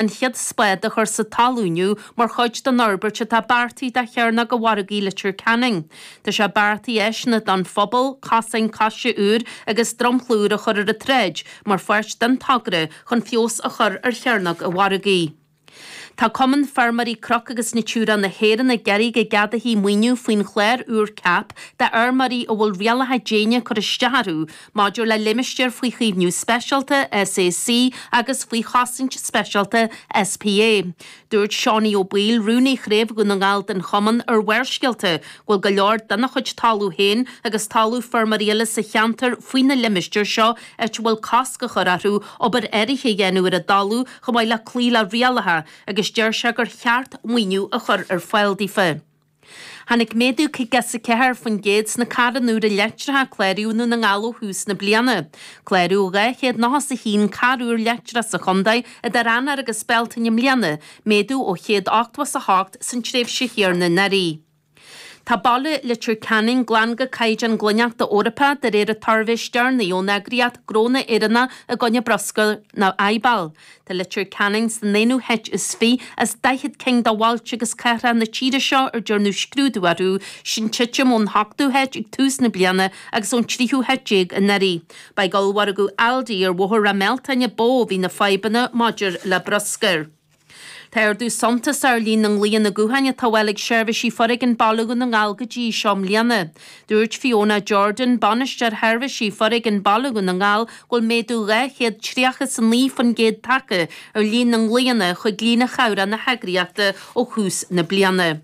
an chéad spád a chur sa talamh inniu mar chuid den fhorbairt atá beartaithe do Chearnóg an Mhargaidh i Leitir Ceanainn. Tá sé beartaithe áiseanna don phobal, cosáin coise úra agus dromchla úr a chur ar an tsráid mar pháirt den togra chun feabhas a chur ar chearnóg an mhargaidh. Tá Cumann Feirmeoirí Cnoc agus Natura na hÉireann ag iarraidh go gceadófaí maoiniú faoin chlár úr CAP d'fheirmeoirí a bhfuil rialacha ag déanamh cur isteach orthu Maidir le Limistéir faoi Chaomhnú Speisialta, SAC, agus faoi Chosaint Speisialta, SPA, dúirt Seánaí Ó Baoill, Rúnaí Chraobh Dhún na nGall den Chumann ar Bharrscéalta, go bhfuil go leor dena chuid talaimh féin agus talamh feirmeoirí eile sa cheantar faoi na limistéir seo áit a bhfuil cosc á chur orthu obair áirithe a dhéanamh ar a dtalamh chomh maith le cloí le rialacha agus deir sé gur cheart maoiniú a chur ar fáil daofa. Tháinig méadú 54% sna carranna úra leictreacha a cláraíodh i nDún na nGall ó thús na bliana. Cláraíodh 291 carr úr leictreach sa chontae idir Eanáir agus Bealtaine i mbliana, méadú ó 188 san tréimhse chéanna anuraidh. Tá baile Leitir Ceanainn glan go caighdeán glaineachta Eorpach de réir an tsuirbhé is deireanaí ón eagraíocht Gnónna Éireannach i gcoinne Bruscair nó IBAL. Tá Leitir Ceanainn san aonú háit is fiche as daichead cinn de bhailte agus cathracha na tíre seo ar dearnadh scrúdú orthu sin titim ón hochtú háit ag tús na bliana agus ón tríú háit déag anuraidh. Ba ag ollmhargadh Aldi ar Bhóthar Ráth Mealtain ba mhó a bhí na fadhbanna maidir le bruscar. Tá ardú suntasach ár líon na nglaonna gutháin atá á bhfáil ag seirbhísí Foréigin Baile Dhún na nGall go dtí seo i mbliana. Dúirt Fiona Jordan, Bainisteoir Sheirbhísí Foréigin Baile Dhún na nGall, go bhfuil méadú 239% tagtha ar líon na nglaonna chuig líne chabhrach na heagraíochta ó thús na bliana.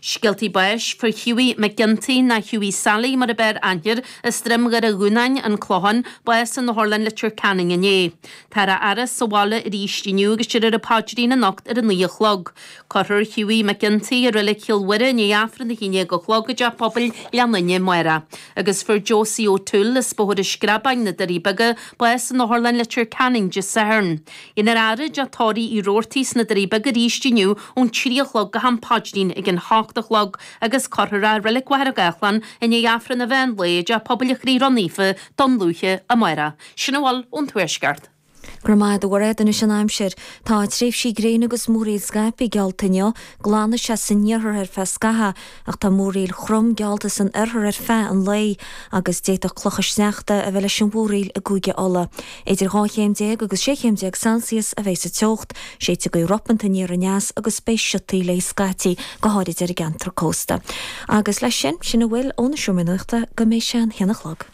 Scéaltaí báis. Fuair Hughie McGinty, nó Hughie Sally mar ab fhearr aithne air, as Droim Dhoire Dhúnáin, An Clochán, bás in Otharlann Leitir Ceanainn inné. Táthar á fhaire sa bhaile arís inniú agus déarfar an paidrín anocht ar a naoi a chlog. Cuirfear Hughie McGinty i Reilig Chill Mhuire i ndiaidh Aifreann a haon déag a chlog i dTeach Pobail Ghleann Fhinne amárach. Agus fuair Josie O'Toole as Bóthar an Screabáin, Na Doirí Beaga, bás in Otharlann Leitir Ceanainn Dé Sathairn. Beifear á fhaire i dTeach Tórraimh Uí Robhartaigh sna Doirí Beaga arís inniu ón trí a chlog go ham paidrín ag an hocht a chlog agus cuirfear é i Reilig Mhachaire Gathlán i ndiaidh Aifreann an mheán lae i dTeach Pobail an Chroí Ró-Naofa, Dún Lúiche, amárach. Sin a bhfuil ón Tuaisceart. Go raibh maith agat, a Mhuiréad, anois an aimsir. Tá tréimhsí gréine agus múraíl scaipthe geallta inniu, glanfaidh sé san iarthar ar feadh scaithe ach tá múraíl throm geallta san oirthear ar feadh an lae agus d'fhéadfadh clocha sneachta a bheith leis an mhúraíl i gCúige Uladh. Idir 12 chéim agus 16 chéim Celsius a bheidh sa teocht, séidfidh gaoth ropánta aniar aneas agus beidh siotaí léi scaití, go háirid ar an gceantar cósta. Agus leis sin, sin a bhfuil ó na Seomraí Nuachta go mbeidh sé an haon a chlog.